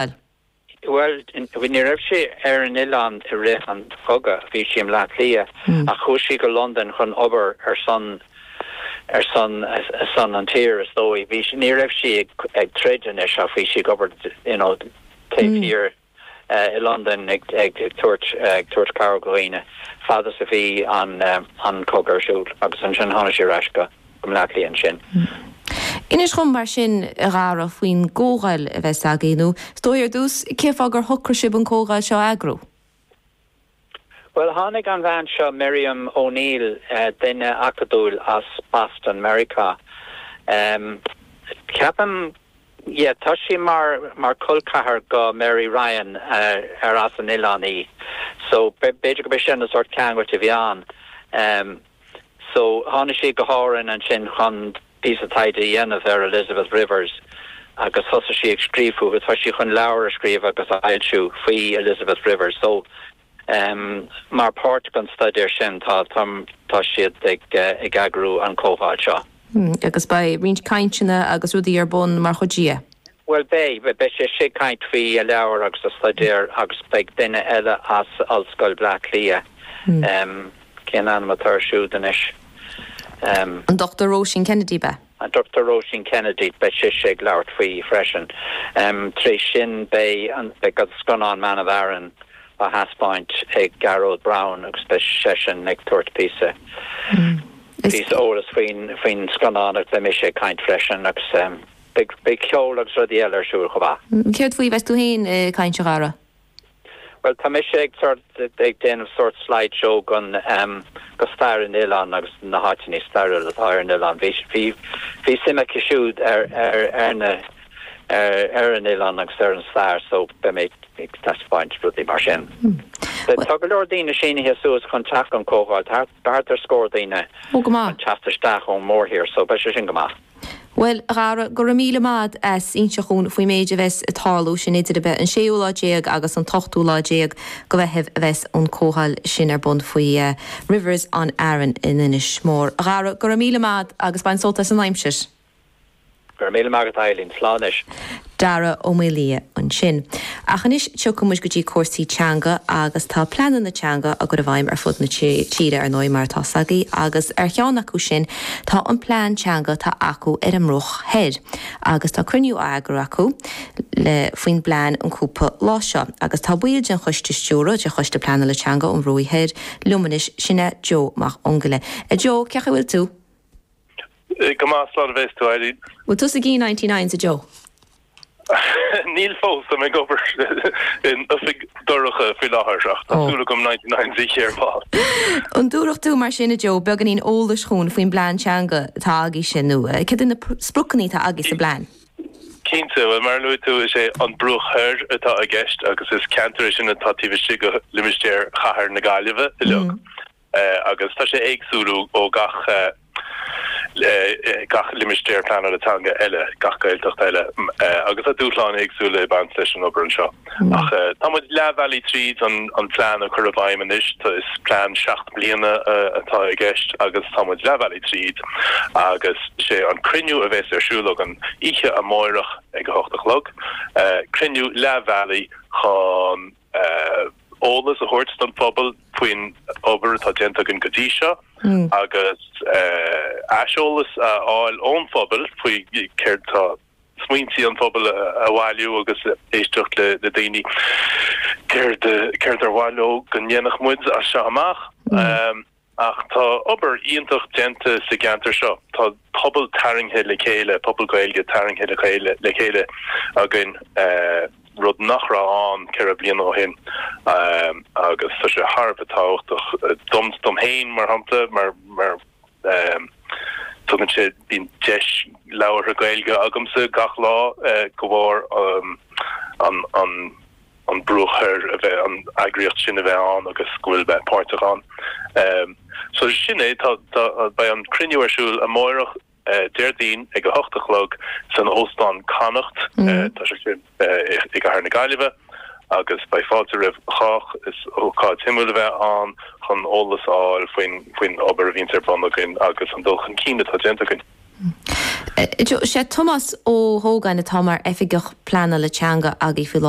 fáil? Bhuel, ní raibh sí ar an oileán i rith an chogadh, bhí sí i mBleá Cliath ach chuaigh sí go Londain chun obair ar son ar son ar son an tír is dóigh. Bhí sí, ní raibh sí ag ag troid anois ach bhí sí ag obair you know taobh thiar i Londain ag ag ag tabhairt ag tabhairt cabhair do dhaoine fad is a bhí an an cogadh ar siúl agus ansin tháinig sí ar ais go go mBleá Cliath ansin. Inis dhom mar sin, a Dhara, faoin gcomhdháil a bheas agaibh, nó is dóigh ar dtús, cén fáth gur shocraigh sibh an comhdháil seo a eagrú? Bhuel, tháinig an bhean seo, Miriam O'Neill, duine acadúil as Boston, Meiriceá, ceapaim, yeah, tá sí mar col ceathair go Mary Ryan, ar as an oileán í, so b'fhéidir gurb é sin an sórt ceangal a bhí ann. So, tháinig sí go hÁrainn ansin chun píosa taighde a dhéanamh ar Elizabeth Rivers agus thosaigh sí ag scríobh fúithi. Tá sí chun leabhar a scríobh agus a fhoilsiú faoi Elizabeth Rivers. So, em, mar páirt den staidéar sin tá, tá, tá siad ag, eh, ag eagrú an comhdháil seo. Hmm, agus beidh roinnt cainteanna agus rudaí ar bun mar chuid de, eh? Bhuel beidh, beidh sise ag caint faoi a leabhar agus a staidéar agus beidh duine eile as Ollscoil Bhleá Cliath, cén ainm atá air siúd anois, em. An Dr Róisín Kennedy beidh. An Dr Róisín Kennedy, beidh sise ag labhairt faoi freisin, em. Tar éis sin beidh an, beidh an scannán Man of Aran á thaispeáint ag Gearóid Brown agus beidh seisean ag tabhairt píosa, píosa eolas faoin, faoin scannán agus beidh mise ag caint freisin agus em. Beidh ceol agus rudaí eile ar siúl chomh maith. Céard faoi a bheas tú féin ag caint a Dhara? Bhuel, tá mise ag déanamh sórt slide show den stair an oileáin agus na háiteanna stairiúla atá ar an oileán. Bhí suim aici siúd ar an oileán agus ar an stair so beidh mé ag taispeáint rudaí mar sin. Tá go leor daoine sínithe suas chun teacht don chomhdháil thart. Thart ar scór daoine chun teacht isteach ón mórthír so beidh sé sin go maith. Bhuel, a Dhara, go raibh míle maith a'd as inse dhúinn faoin méid a bheas ag tarlú sin idir ab ea an séú lá déag agus an t-ochtú lá déag de Mheitheamh a bheas an comhdháil sin ar bun faoi Rivers on Aran in Inis Mór. A Dhara, go raibh míle maith a'd agus bain sult as an aimsir. Go raibh míle maith agat, a Eileen. Slán anois. Dara Ó Maolaodha ansin. Ach anois tiocfaidh muid go dtí cúrsaí teanga agus tá pleananna teanga á gcur i bhfeidhm ar fud na tíre, ar ndóigh, mar atá a fhios agaibh agus ar cheann acu sin tá an plean teanga atá acu ar an mBruach Thoir agus tá cruinniú á eagrú acu le, faoin bplean an cúpla lá seo agus tá ball den choiste stiúrtha, de Choiste Pleanála Teanga an Bhruaigh Thoir, liom anois, sin é Joe Mac an Ghoill. A Joe, cé' chaoi bhfuil tú? Go maith, slán a bheas tú Eileen. Bhfuil tusa ag ithe 99s a Joe? Níl fós, táim ag obair in oifig dorcha faoi láthair ach tá súil agam 99 a ithe ar ball. An dtiúrfadh tú mar sin a Joe beagáinín eolais dúinn faoin bplean teanga atá agaibhse nó cad iad na spriocanna atá agaibh sa bplean? Cinnte, bhuel mar a luaigh tú is é An Bruach Thoir atá i gceist agus is ceantar é sin atá taobh istigh de limistéar chathair na Gaillimhe uilig. agus tá sé éagsúil ó gach limistéar pleanála teanga eile, gach Gaeltacht eile agus tá dúshláin éagsúla ag baint leis an obair anseo. Ach tá muid leathbhealaigh tríd an plean a chur i bhfeidhm anois, is plean seacht mbliana atá i gceist agus tá muid leathbhealaigh tríd agus sé an cruinniú a bheas ar siúl againn oíche amárach ag a hocht a chlog, cruinniú leathbhealaigh chun. eolas a thabhairt don phobal faoin obair atá déanta againn go dtí seo agus aiseolas a fháil ón phobal faoi céard atá smaointí an phobail a bhailiú agus éisteacht le daoine céard ar mhaith leo go ndéanfadh muid as seo amach. Ach tá obair iontach déanta sa gceantar seo, tá pobal tarraingthe le chéile, pobal Gaeilge tarraingthe le chéile againn, rud nach raibh ann ceithre bliana ó shin agus tá sé thar a bheith tábhachtach dom, dom féin mar shampla mar mar tugann sé, bíonn deis labhartha Gaeilge agamsa gach lá de bharr an an. an Bruach Thoir a bheith an eagraíocht sin a bheith ann agus go bhfuil bheith páirteach ann. So sin é tá tá beidh an cruinniú ar siúl amárach Déardaoin ag a hocht a chlog san Óstán Connacht. Tá sé sin i gcathair na Gaillimhe agus beidh fáilte roimh chách. Is ócáid shuimiúil a bheidh ann chun eolas a fháil faoin faoin obair a bhíonn ar bun againn agus an dul chun cinn atá déanta againn. Is é Tomás Ó hÓgáin atá mar Oifigeach Pleanála Teanga agaibh faoi láthair.